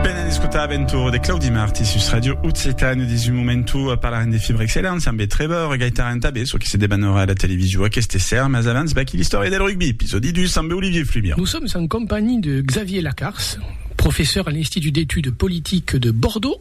Pena d'escotar Aventura de Claudi Marti sus Radio Occitane dins un momentu parlarem de Fibre Excellence ambe Trevor Gaitaran tanbe çò que se debanora a la televisio aqueste esser mas abans vaquí l'istòria del rugbi episòdi 2 ambe Olivier Fluvian. Nous sommes en compagnie de Xavier Lacars, professeur à l'Institut d'études politiques de Bordeaux.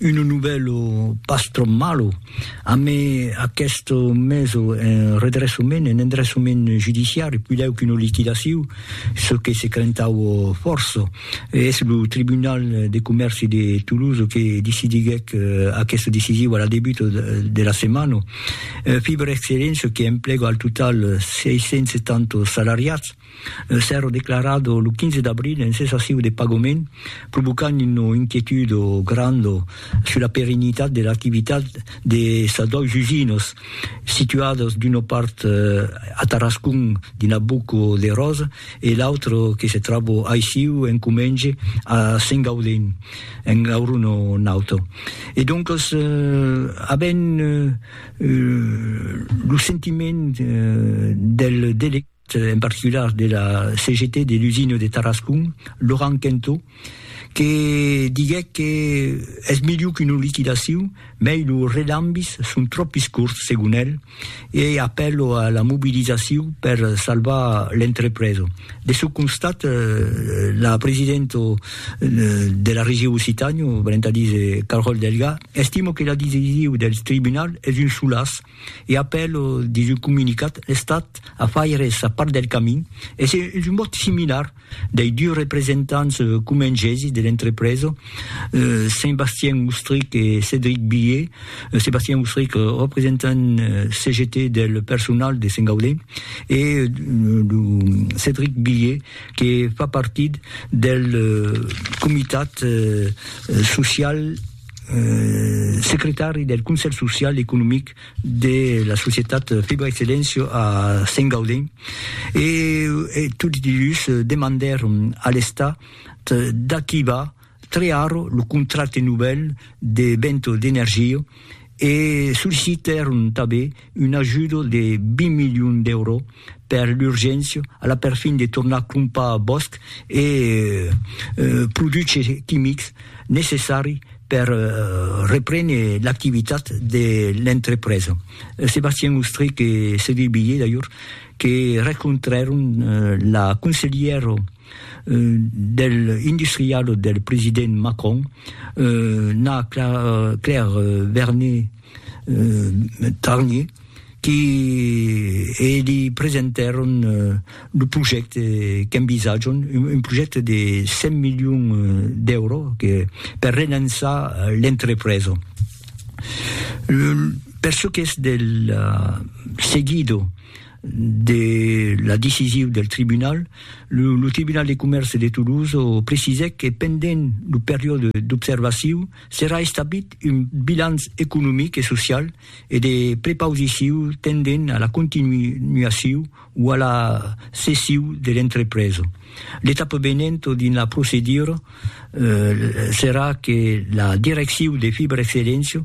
Uno novèlo pas tròp malo, amé aqueste meso en redressament, en endressament judiciari, puidèu qu'una liquidaciu, çò que se crentaue fòrça. Es lo Tribunal de Comèrci de Toulouse que decidiguèc aqueste decisiu a la debuta de la setmana. Fiber Excellence que emplega al total 670 salariats. Un cèrre declarat lo 15 d'abril en cessaciu de pagament, provocant una inquietud granda sus la perenitat de l'activitat de sas dois usinas, situadas d'una part a Tarascon dins la Boca de Rosa e l'autra que se tròba aissiu en comenge a Sengaudin, en Gaurona Nauta. E doncas avèm lo sentiment del delegat. en particular de la CGT de l'usina de Tarascon, Laurent Quentot, que diguèc que es milhor qu'una liquidacion, mei los redambis son tròp iscurts, segon el, e ei apèlo a la mobilizacion per salvar l'entrepresa. De çò constat, la presidenta de la Region Occitània, valent a díser Carole Delga, estima que la decision del tribunal es un solaç e apèl dins un comunicat l'Estat a faire sa part del camin, es un vòt similar dei dus representants comengesi de l'entrepresa, Sébastien Oustrich e Cédric Billié, Sébastien Oustrich representant CGT del personal de Saint-Gaudé e lo Cédric Billié que fa partit del comitat social. secretari del Conselh Social e Economic de la societat Fibra Excellencio a Sent Gaudent e tots dus demandèron a l'Estat d'activar tre ara lo contracte novèl de Vento d'Energia e sollicitèron tanben un ajudo de 20 milions d'euro per l'urgéncia a la perfin de tornar crompar bòsc e produches quimics necessari per reprene l'activitat de l'entrepresa. Sébastien Ostrich e Cédric Billé d'ajor que rencontrèron la conselhièra del industrial del president Macron, Na Claire Vernet, Tarni, qui li presentèron lo projècte qu'envisatjon, un projècte de 100 milions d'èuro per relançar l'entrepresa. Per çò qu'es del seguido de la decisiu del tribunal, lo Tribunal de Comèrce de Toulouse precisèc que pendent lo periòde d'observaciu, Serà establit un bilanç economic e social e de prepausiciu tendent a la continuaciu o a la cessiu de l'entrepresa. L'etapa venenta dins la procedura serà que la direcciu de Fibra Excelléncia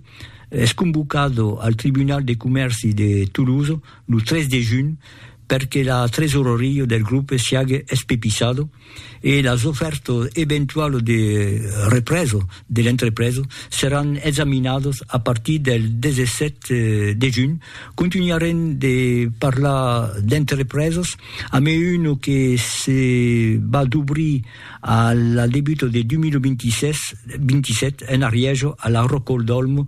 es convocada al Tribunal de Comèrci de Tolosa lo 3 de junh per que la tresoraria del grupe siague espepissada, e las ofèrtas eventualas de represa de l'entrepresa seràn examinadas a partir del 17 de junh. Contunharem de parlar d'entrepresas amé una que se va d'obrir a la debuta de 2026, 27, en Arièja, a la Rocòl d'Òlm,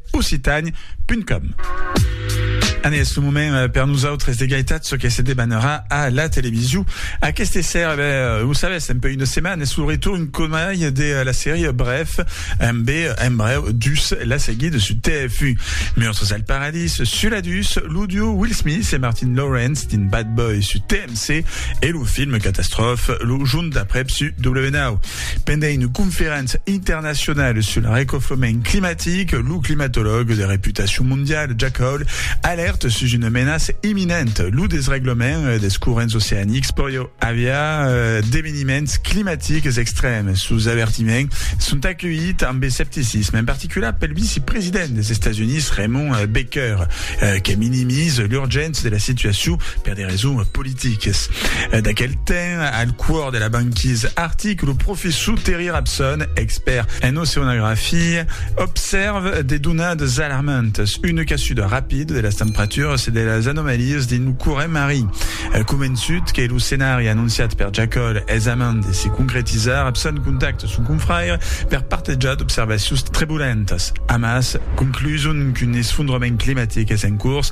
Occitània punt com. An es lo moment euh, per nosautres de gaitat ce que se debanarà a la television aquesta sèra ben, euh, lo sabes un peu una setmana es lo retorn comaire de euh, la sèria Bref amb en breu dus la seguida su TF1 Monstres al Paradis su la dus lo duo Will Smith e Martin Lawrence din Bad Boy su TMC e lo film catastrophe lo junt d'après su W9 pendent una conferéncia internacionala sul recoflament climatic, lo climatològ de reputacion mondiala Jack Hall alèrta sus una menaça imminenta, lo desreglament dels corrents oceanics. Pòrió aviar d'eveniments climatics extrèms. Sos avertiments son aculhits amb escepticisme, en particular pel vicepresident dels Estats Units Raymond Baker, que minimiza l'urgéncia de la situacion per de raisons politicalas. Tiques. D'aquel temps, al cuor de la banquisa artic, lo professor Terry Rabson, expèrt en oceanografia, obsèrve de donadas alarmantas, una casuda rapida de las temperaturas e de las anomalias dins lo corrent marin. Convençut que lo scenari anonciat per Jacoll es a mand de se concretizar, Rabson contacta son confrère per partejar d'observacions trebulentas. Amassa, concluson qu'un esfondrament climatic es en cors,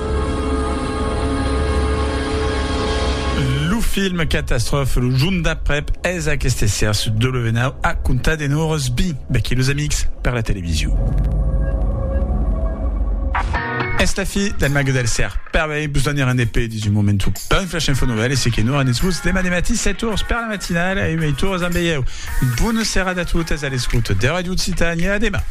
Lo film Catastrophe, lo jorn d'aprèp, es aqueste esser sus W9 a comptar de nòrs bi becchi los amics per la television. Es la fi del Mague del Ser. Per vei, vos donir un EP dins un moment un peu flash info novel e se que non renetz vos demà de matí 7 tours per la matinala e 8 tours amb veieu. Bona serada a totes a l'escuta de Radio Occitània. A demà.